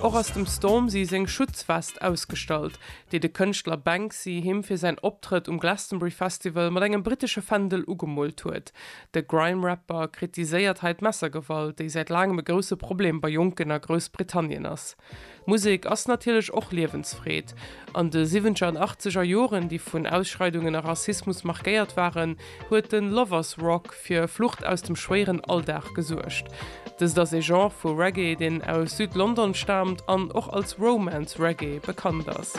Och ass dem Stormzy seng Schutzwest ausgestallt, déi de Kënschtler Banksy him fir säin Optrëtt um Glastonbury Festival mat engem brittesche Fändel ugemoolt huet. De Grime-Rapper kritiséiert hei d'Messergewalt, déi säit laangem e grousse Problem bei Jonken a Groussbritannien ass. Musek ass natierlech och Liewensfreed. An de siwwentger an achtzeger Joren, déi vun Ausschreidungen a Rassismus markéiert waren, huet de Lovers Rock fir Flucht aus dem schwéieren Alldag gesuergt. Dëst ass ee Genre vu Reggae, deen aus Süd-London staamt an och als Romance Reggae bekannt ass.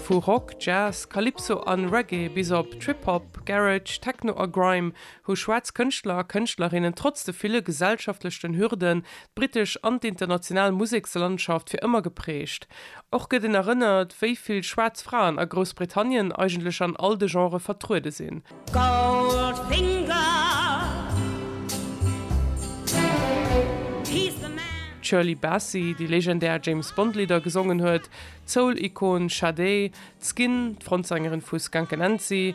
Vu Rock, Jazz, Calypso an Reggae bis op Trip-Hop, Garage, Techno a Grime, hu schwaarz Kënschtler a Kënschtlerinnen trotz de ville gesellschaftlechten Hürden d'brittesch an d'international Musekslandschaft fir ëmmer geprägt. Och gëtt een erënnert, wéi vill schwaarz Fraen a Groussbritannien eigentlech an all de Genrë vertruede sinn. D'Shirley Bassey, déi legendär James Bond-Lidder gesongen huet, d'Soul-Ikon Sade, d'Skin, d'Frontsängerin vu Skunk Anansie,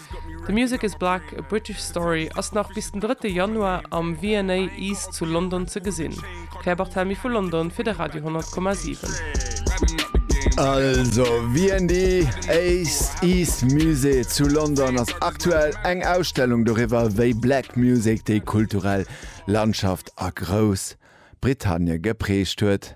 The Music Is Black, A British Story ass nach bis den 3 Januar am V&A East zu London ze gesinn. D'Claire Barthelmy vu London fir de Radio 10,7. Also V&A East Musée zu London ass aktuell eng Ausstellung doriwwer, wéi Black Music déi kulturell Landschaft a Groussbritannien geprägt huet.